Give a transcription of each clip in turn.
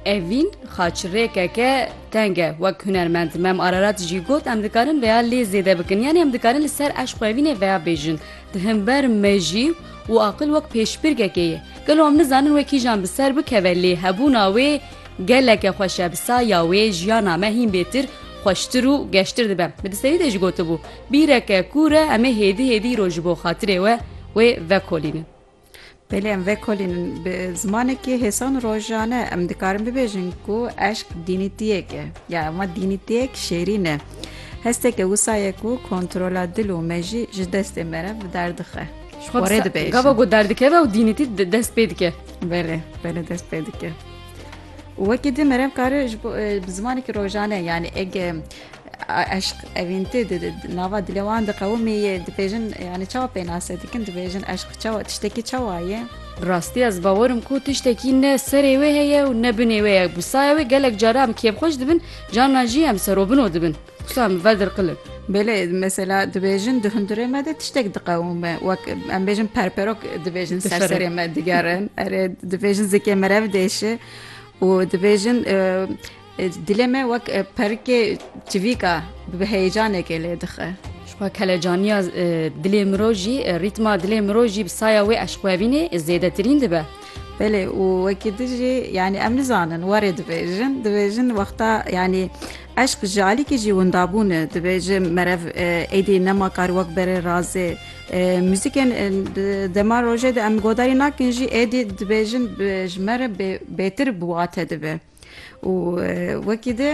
Evîn xaçirêkeke teng e wek hunermend Mem Ararat jî got em dikarin veya lê zêde bikin yanî em dikarin li ser eşq evînê veya bêjin di himber me jî û aqil wek pêşbirgekê ye gelo em nizanin wê kîjan bi ser bikeve lê hebûna wê geleke xweş e bi saya wê jiyana me hîn bêtir xweştir û geştir dibe min di serî de jî gotibû bîreke kûr e em ê hêdî hêdî îro ji bo xatirê we wê vekolînin. Pêlê em vekolînin bi zimanekî hêsan û rojane em dikarin bibêjin ku eşq dînîtiyek e ya ema dînîtiyek şêrîn e. Hesteke wisa ye ku kontrola dil û mejî ji destê me re bi der dixe. Ji xwe Xwarê dibêjin. Gava ku derdikeve û dînîtî di- dest pê dike. Belê, belê dest pê dike. Û wekî din merev kare ji bo e, bi zimanekî rojane yanî ege Eşq evîn tê di nava dilê wan de qewimî yê. Dibêjin yanî çawa pênase dikin? Dibêjin eşq çawa tiştekî çawa ye? Bi rastî ez bawer im ku tiştekî ne serê wê heye û ne binê wê ye. Bi saya wê gelek caran em kêfxweş dibin, carnan jî em serobino dibin. Xusa em vedirqil in. Belê, mesela dibêjin di hundirê me de tiştek diqewime. Wek em bêjin perperok dibêjin ser serê me digerin. Erê dibêjin zikê merev dêşe û dibêjin Dilê me wek perikê çivîk a bi heyecanekê lê dixe. Jixwe kelecaniya dilê mirov jî rîtma dilê mirov jî bi saya wê eşqwevînê zêdetirîn dibe. Belê û wekî tu jî yanî em nizanin warê dibêjin dibêjin wexta yanî eşq ji alîkî jî windabûn e dibêjin merev e, êdî nema kar wek berê razê e, muzîkên e, dema rojê de em godarî nakin jî êdî dibêjin ji me re bêtir bi wate dibe. û wekî di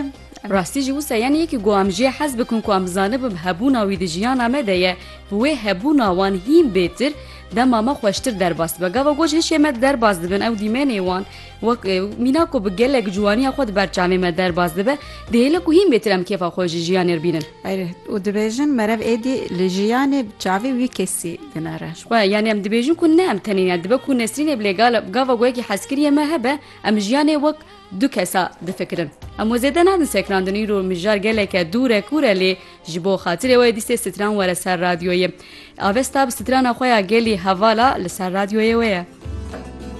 rastî jî wisa yenê yekî ku em jê hez bikin ku em zanibin hebûna wî di jiyana me de ye bi wê hebûna wan hîn bêtir dema me xweştir derbas dibe gava ku ji hişê me derbas dibin ew dîmenê wan wek mîna ku bi gelek ciwaniya xwe di ber çavê me derbas dibe dihêle ku hîn bêtir em kêfa xwe ji jiyanê re bînin û dibêjin merev êdî li jiyanê bi çavê wî kesî dinere xwe yanê em dibêjin ku ne em tenê ya dibe ku nesrînê bilê gava ku yekî hezkiriyê me hebe Em jiyanê wek du kesa difikirin. Em we zêde nadin sekrandin îro mijar geleke dûre kûre lê ji bo xatirê we dîstê stran were ser radyoyê. Avesta bi strana xwe ya gelî hevala li ser radyoyê we ye.